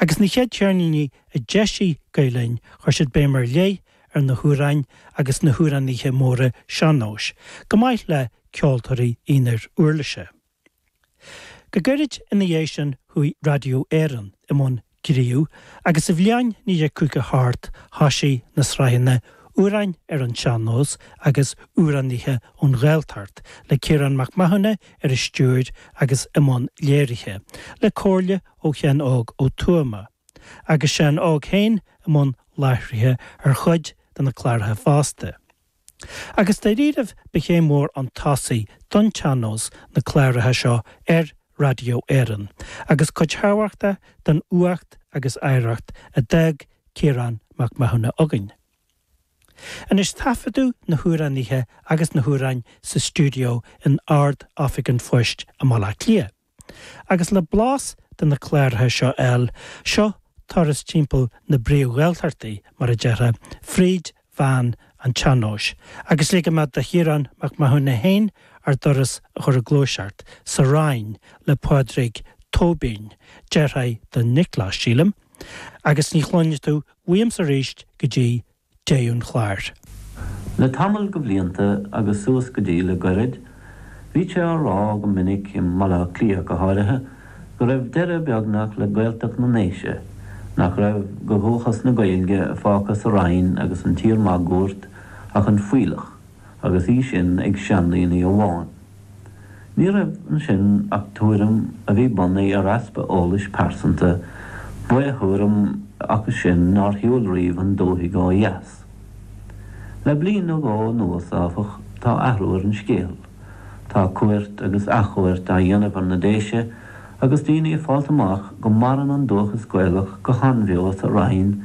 Agus na chéad cheirníní a d'eisigh Gael Linn chuir siad béim ar leith ar na hamhráin agus na hamhránaithe móra sean-nóis, chomh maith le ceoltóirí aonair uirlise. Go gairid ina dhiaidh sin chuaigh Raidió Éireann i mbun gnímh agus sa bhliain 1950 thart thoisigh na sraitheanna Amhráin ar an Sean-Nós agus Amhránaithe ón Ghaeltacht le Ciarán Mac Mathúna ar an stiúir agus i mbun léirithe, le comhairle ó Sheán Óg Ó Tuama, agus Seán Óg féin i mbun láithrithe ar chuid de na cláracha fosta. Agus dáiríribh ba chéim mhór chun tosaigh don tsean-nós na cláracha seo ar Raidió Éireann agus cuid thábhachtach den uacht agus oidhreacht a d'fhág Ciarán Mac Mathúna againn. Anois taifeadadh na hamhránaithe agus na hamhráin sa stiúideo in Ard-Oifig an Phoist i mBaile Átha Cliath. Agus le blas de na cláracha seo a fháil, seo turas timpeall na bpríomh-Ghaeltachtaí, mar a déarfá, fríd mheán an tsean-nóis, agus ligimid do Chiarán Mac Mathúna féin ár dturas a chur i ngluaiseacht, sa Rinn le Pádraig Tóibín, deartháir do Nioclás, sílim, agus ní chluinfidh tú uaimse arís go dtí deireadh an chláir. Le tamall de bhlianta agus suas go dtí le goirid, bhítí á rá go minic, i mBaile Átha Cliath go háirithe, go raibh deireadh beagnach le Gaeltacht na nDéise, nach raibh de dhúchas na Gaeilge fágtha sa Rinn agus an tír máguaird ach an fuílleach, agus í sin ag seandaoine amháin. Ní raibh ansin ach tuairim a bhí bunaithe ar easpa eolais pearsanta, ba é tuairim acu sin nár shiúil riamh an dúthaigh ó dheas. Le bliain nó dhó anuas, áfach, tá athrú ar an scéal. Tá cuairt agus athchuairt á dhéanamh ar na Déise agus daoine ag fáilt amach go maireann an dúchas Gaelach go han-bheo sa Rinn,